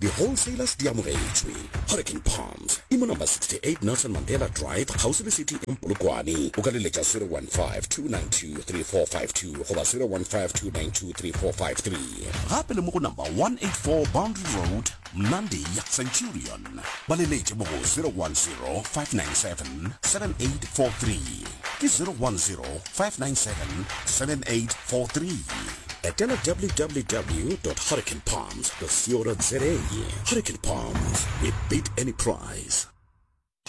Di wholesalers di amogetšwe. Hurricane Palms e mo number 68 Nelson Mandela Drive kgauswi le City Inn Polokwane. O ka le letša 0152923452 goba 0152923453. Gape le mo go number 184 Boundary Road, Mnandi, Centurion. Ba le letše mo go 0105977843. Ke 0105977843. Etela www. Hurricane Palms. Hurricane Palms, we beat any price.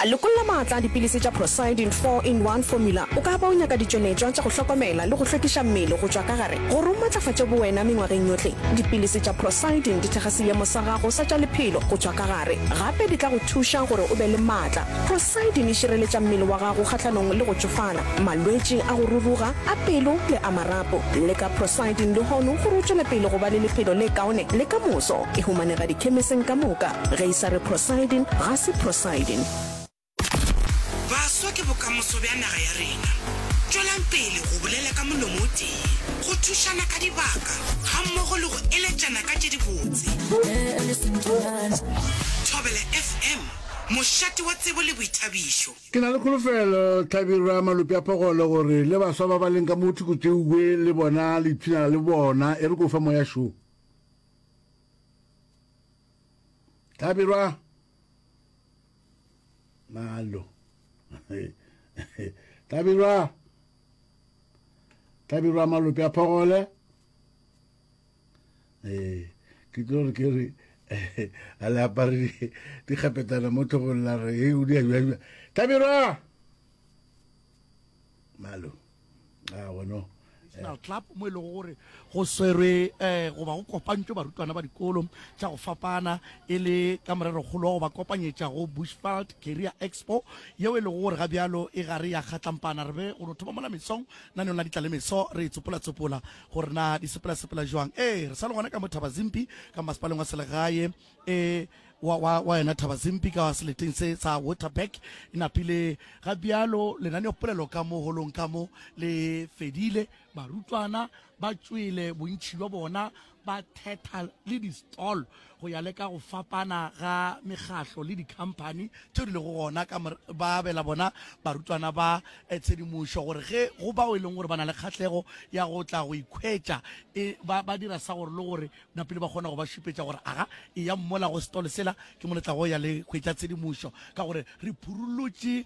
Lokolla maatla a dipilisi tša Procyidin Four in One Formula. O ka ba o nyaka ditšweletšwa tša go hlokomela le go hlwekiša mmele go tšwa ka gare gore o matlafatše bowena mengwageng yohle. Dipilisi tša Procyidin di thekga seemo sa gago sa tša lephelo go tšwa ka gare. Gape di tla go thuša gore o be le maatla. Procyidin e šireletša mmele wa gago kgahlanong le go tšofala. malwetši a go ruruga a pelo le a marapo. Leka Prosidin lehono gore o tšwele pele go ba le lephelo le kaone le ka moso. E humanega dikhemeseng ka moka. Ge e sa re Prosidin, ga se Prosidin. Baswa ke bokamoso bja naga ya rena. Tšwelang pele go bolela ka molomo o tee, go thušana ka dibaka gammogo le go eletšana ka tše dibotse. Thobela FM, mošate wa tsebo le boithabišo. Ke na le kholofelo, hlabirwa malope a phogolo, gore le baswa ba ba leng ka mo thoko tšeue le bona le ipshinela le bona. E re ke o fa moya šo. Hlabirwa. Malo. Hlabirwa. Hlabirwa malope a phogole. ee ke tlo re ke re a le apare dikgapetana mo tlhogong la re e o di ajajwa tlhabirwa malo a ah, gono national club mo e lego gore go swerwe um goba go kopantšwe barutwana ba dikolo tša go fapana e le ka morerokgolo wa go ba kopanyetša go bushfald career expo yeo e lego gore ga bjalo e gare ya kgatlampana re be go no thoma mola mesong na ne o na ditlalemeso re e tsopolatsopola gore na di sepelasepela jwang ee re sa le gona ka mo thabazimpi ka masepaleng wa selegae e wa, wa, wa yona thabazimpi ka seleteng se sa waterback e napile ga bjalo lenaneopolelo ka mo holong ka mo le fedile barutwana ba tšwele bontšhi bja bona ba thetha le distolo Go ya le ka go fapana ga mekgahlo le dikhamphani tšeo di lego gona, ka morago ba abela bona barutwana ba tshedimošo gore ge go bao e leng gore ba na le kgahlego ya go tla go ikhwetša e ba ba dira sa gore le gore na pele ba kgona go ba šupetša gore aga eyang mola go setolo sela ke mo le tlago ya le hwetša tshedimošo ka gore re phurulutše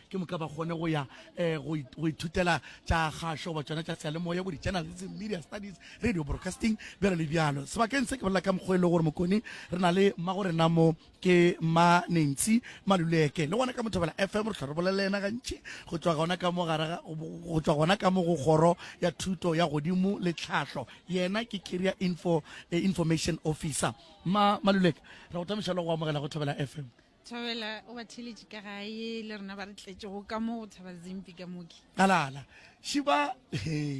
ke moka ba kgone go ya um go ithutela tša kgašo goba tsona tša seyalemoya bo di-journalism media studies radio broadcasting bjalo le bjalo sebakeng se ke bolela ka mokgwa e le gore mokone re na le mma go rena mo ke ma nancy maluleke le gona ka mothobela fm re tlho re bolele ena gantši go tswa gona ka mo gare go tswa gona ka mo go kgoro ya thuto ya godimo le tlhahlo yena ke career info eh, information officer ma maluleke re go tamiša le go amogela go thobela fm Thabela o ba theletše ka gae le rena ba re tletšego ka mo go thaba zimpi ka moki. Kalala, šiba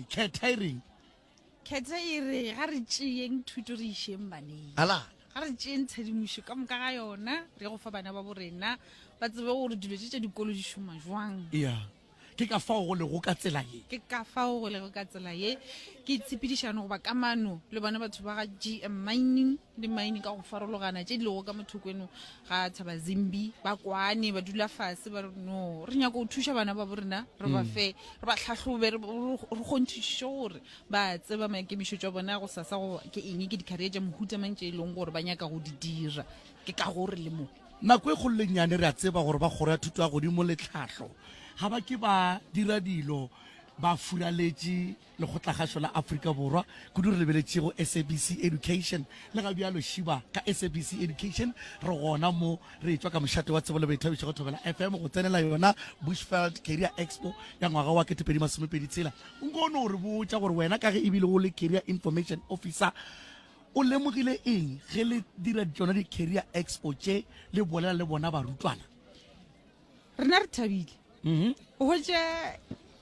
khetha e reng? Khetha e re ga re tšeyeng thuto re išeng baneng. Kalala. Ga re tšeyeng tshedimošo ka moka ga yona re go fa bana ba borena ba tsebe gore dilo tše tša dikolo di šoma jwang. Yeah. ke ka fao go lego ka tsela ye ke ka fao go lego ka tsela ye ke tshepedišano goba kamano le bona batho ba ga gm mining le mine ka go farologana tše di lego ka mothoko eno ga tshaba zimbi ba kwane ba dula fase ba re no re nyako go thuša bana ba bo rena re ba mm. fe re ba tlhatlhobe re kgonthišiše gore ba tseba maikemišo tša bona go sasa go ke eng ke dikgaria tša mohuta mang tše e leng gore ba nyaka go di dira ke ka gore le mo Nako e kgolo le nnyane re a tseba gore ba Kgoro ya Thuto ya Godimo le Tlhahlo ga ba ke ba dira dilo ba furaletše Lekgotlagašo la Afrika Borwa, kudu re lebeletše go SABC Education. Le ga bjalo šiba ka SABC Education re gona mo re etšwa ka mošate wa tsebo le boithabišo go Thobela FM go tsenela yona Bushveld Career Expo ya ngwaga wa 2026. O nko o no re botša gore wena ka ge e bile o le Career Information Officer, O lemogile eng ge le dira tšona di-career expo tše le bolela le bona barutwana? Rena re thabile. Mm-hmm. O hwetša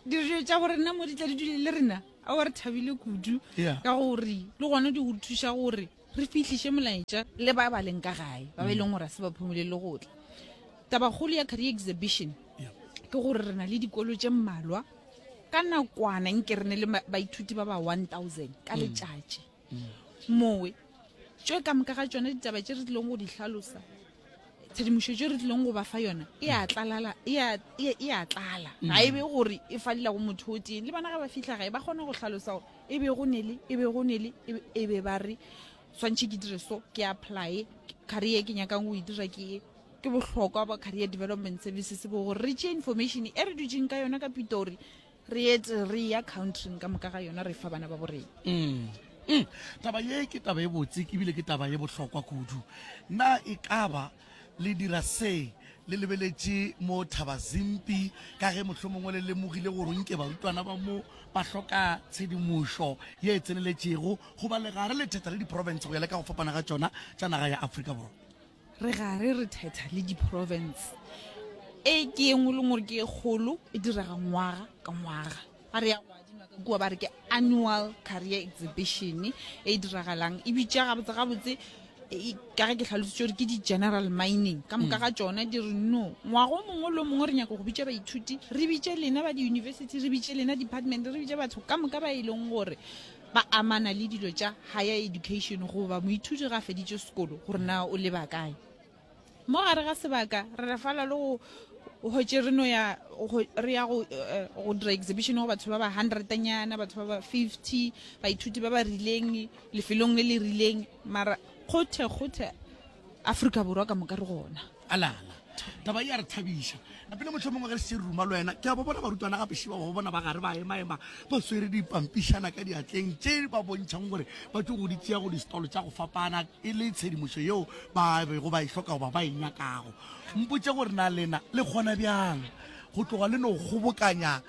dijo tša borena mo di tla di dule le rena ao re thabile kudu ka gore le gona di go thuša gore re fitlhiše molaetša le ba ba leng ka gae ba ba e leng gore a se ba phomole le gotla tabakgolo ya career exhibition ke gore re na le dikolo tše mmalwa ka nakwana nke re ne le baithuti ba ba 1000 ka mm. letšatši mowe tšo ka moka ga tšone ditaba tše re tlileng go di hlalosa tshedimošo tše re tlileng go ba fa yona e a tlala e a tlala mm. ga e be gore e falela go motho o teng le bana ga ba fitlha gae ba kgone go hlalosa gore e be go nele e be go nele e, e be ba re tshwanetse ke dire so ke apply career ke nyakang go e dira ke e ke bohlokwa ba career development services bo gore re tšee information e re dutseng ka yona ka pitori re ete re ya countryng ka moka ga yona re fa bana ba borena mm. mm. taba ye ke taba e botse ebile ke taba ye bohlokwa kudu na e kaba le dira se le lebeletše mo thaba zimpi ka ge mohlho mongwe le lemogile gore nke barutwana ba mo ba hloka tshedimošo ye e tseneletšego goba legare le thetha le diprofense go ya le ka go fapana ga tšona tša naga ya aforika borwa Re gare re thetha le diprovense. E ke ye nngwe le nngwe gore ke e kgolo e direga ngwaga ka ngwaga. Ga re ya go adima ka kua ba re ke annual career exhibition e e diragalang e bitša gabotse gabotse ka ge ke tlhalositse gore ke di-general mining ka moka ga tsona di re no ngwago mongwe le mongwe re nyaka go bitša baithuti re bitše lena ba di-university re bitše lena department re bitše batho ka moka ba e leng gore ba amana le dilo tša higher education goba moithuti ga a feditše sekolo gore na o leba kae mo gare ga sebaka re refala le go hotše re no ya re ya go eh, go dira exhibition go batho ba ba hundrednyana batho ba ba fifty baithuti ba ba rileng lefelong le le rileng mara kgothe kgothe aforika borwa ka moka re gona Alala, taba e a re thabiša. Napele motlho mongwe ge re se ruma le wena, ke a ba bona barutwana ga pešeba ba bona ba gare ba emaema ba swere dipampišana ka diatleng tše ba bontšhang gore ba tlo go di tšea go distolo tša go fapana e le tshedimošo yeo ba bego ba e hloka goba ba e nyakago. Mpotše gore na lena le kgona bjang go tloga le no kgobokanya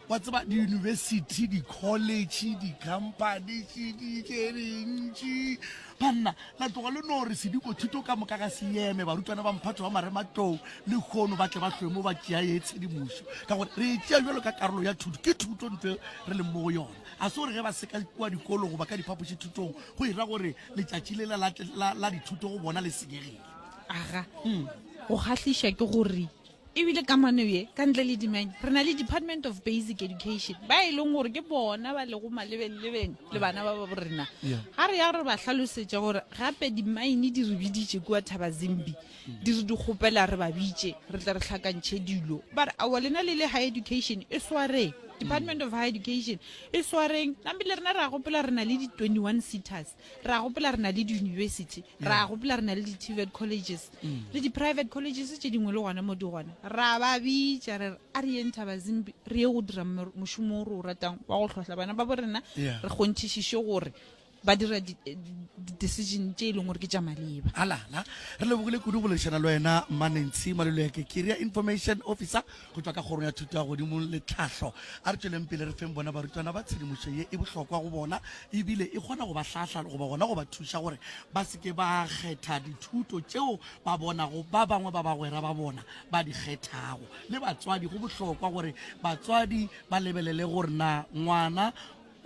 wa tseba diyunibesithi dikholetšhe dikhamphani tšeditše dintši banna la tloga le no re sediko thuto ka moka ga se yeme barutwana ba mphatho wa marematlou le kgono ba tle ba hlwe mo ba tšea ye tshedimošo ka gore re e tšea jalo ka karolo ya thuto ke thuto ntse re leng mo go yona a se gore ge ba seka kua dikolo goba ka diphapoši thutong go ira gore letšatši le la dithuto go bona le senyegile aga go kgahliša ke gore Ebile kamano ye, ka ntle le dimeny, re na le Department of Basic Education, ba e leng gore ke bona ba lego malebeng-lebeng le bana ba ba borena. Ga re ya re ba hlalosetša gore gape dimaine di re biditše kua Thaba Zimbi, di re di kgopela re ba bitše, re tle re hlakantšhe dilo. Ba re, aowa lena le le High Education, e swareng. Department of High Education, e swareng. Namile rena re a gopola re na le di-twenty-one seaters. ra gopola re na le di-university ra gopola re na le di-tvet colleges le di-private colleges tše dingwe le gona mo di gona ra ba bitša re re a re yeng thaba zimbi re ye go dira mor- mošomo o re o ratang wa go tlhohla bana ba bo rena Yeah. re kgonthišiše gore ba dira di- eh, di- di-decision tše e leng gore ke tša maleba alala re lebogile kudu go lešana le wena mmanentshi malelo ya kekiria information officer go tšwa ka Kgorong ya Thuto ya Godimo le Tlhahlo. A re tšweleng pele re feng bona barutwana ba tshedimošo ye e bohlokwa go bona e bile e kgona go ba hlahla goba gona go ba thuša gore ba se ke ba kgetha dithuto tšeo ba bonago ba bangwe ba bagwera ba bona ba di kgethago. Le batswadi, go bohlokwa gore batswadi ba lebelele gore na ngwana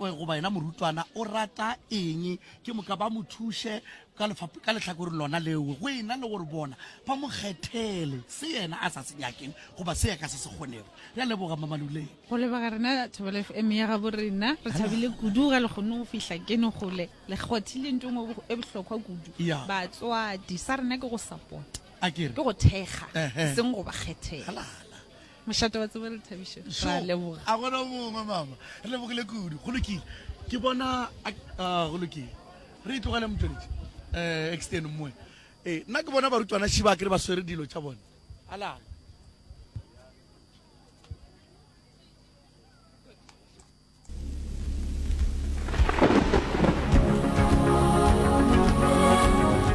Oye, goba yena morutwana o rata eng, ke moka ba mo thuše ka lefap-, ka lehlakoreng lona leo, go e na le gore bona ba mo kgethele se yena a sa se nyakeng goba se ya ka se se kgonego. Re a leboga, Mma Maluleng. Go leboga rena Thobela FM ya gabo rena. Re thabile kudu ge le kgonne go fihla keno gole. Le kgothile nto engwe e bo-, e bohlokwa kudu. Ya. Batswadi, sa rena ke go support-a, Akere. ke go thekga, Ehe. e seng go ba kgethela. Halala. Mošate wa tsebo le thabišo. Sure. Ra leboga. A gona mongwe mama. Re lebogile kudu. Go lokile. Ke bona a ah, go lokile. Re itlogele e motšweletši. Eh extend mmoe. Eh nna ke bona barutwana šiba ke re ba swere dilo tša bona. Alala.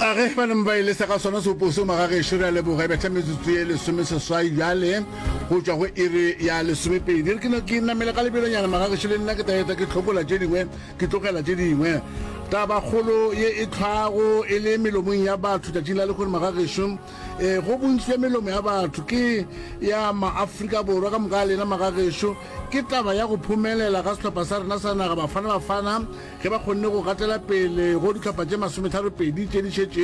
a ge ba neng ba e lesa ka sona seopo seo magagešo re a leboga e betha metsotso ye lesome seswai bjale go tšwa go iri ya lesomepedi re keno ke namele ka lebelonyana magagešo le nna ke taeta ke tlhokola tše dingwe ke tlogela tše dingwe tabakgolo ye e tlhwago e le melomong ya batho tšatšing la lekgone magagešo um eh, go bontsi bja melomo ya batho ke ya maafrika borwa ka moka a lena magagešo Ke taba ya go phumelela ga sehlopha sa rena sa naga Bafana Bafana ge ba kgonne go gatela pele go dihlopha tše masometharo-pedi tše di šetšego.